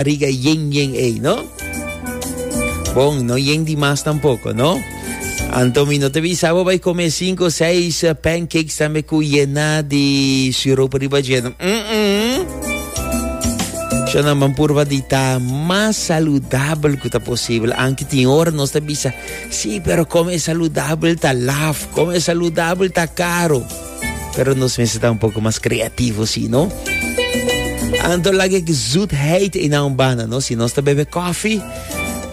Riga yen yen ey, no? Bon, no yen di mas tampoco, no? Anto mi no te bisabo bay come cinco, seis eh, pancakes tambe cu yena di sirope riba lleno. Mm -mm. Shona man purba di ta mas saludable cu ta posible. Anki tin hora nos ta bisa, sí, pero come saludable ta laf, come saludable ta caro. Pero nos mes está un poco más creativo, sí, ¿no? Anto la que zoetheid in een bana, ¿no? Si nos te bebe koffie,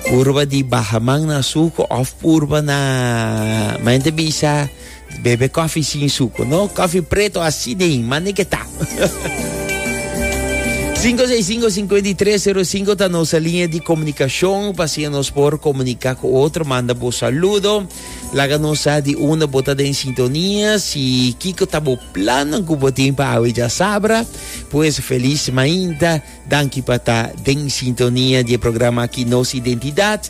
purba di baja man na suco of purba na... Ma gente bisa, bebe koffie sin suco, ¿no? Koffie preto así de in, man que ta. 565-5305 está nuestra línea de comunicación. Pasen nos por comunicar con otro, manda vos saludo. Laga nos sa di unda bo ta den sintonia, si kiko ta bo planan ku bo tin pa awe djasabra. Pues feliz mainta, danki pa ta den sintonia di e programa aki Nos Identidad.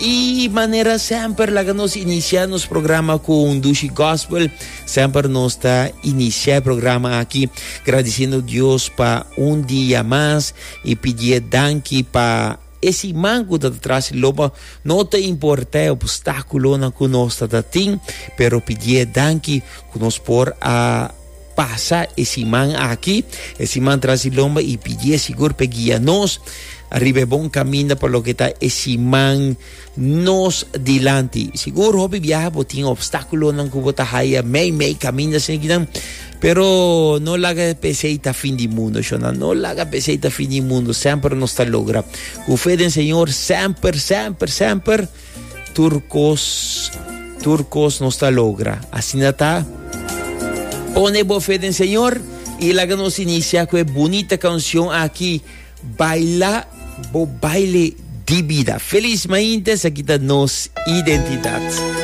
Y manera semper laga nos inicia nos programa ku un dushi gospel. Semper nos ta inicia e programa aki gradiciendo Dios pa un dia mas y pidié danki pa E siman ku ta tras i loba, no ta importá e opstákulonan ku nos ta ta tin, pero pidié danki ku nos por a pasa e siman aki, e siman tras i lomba i pidié sigur p'e guia nos riba e bon kaminda pa loke ta e siman. nos dilanti. Sigur hopi biaha bo tin obstáculonan cu bo ta haya mei mei caminda sin kinan. Pero no laga pesei ta fin di mundo, shona. No laga pesei ta fin di mundo. Semper nos ta logra. Cu fe den Señor, semper, semper, semper, turcos, turcos nos ta logra. Asina ta. Pone bo fe den Señor y laga nos inicia cu e bunita cancion aki. Baila bo baile di bida. Feliz maintes, aki ta nos identidad.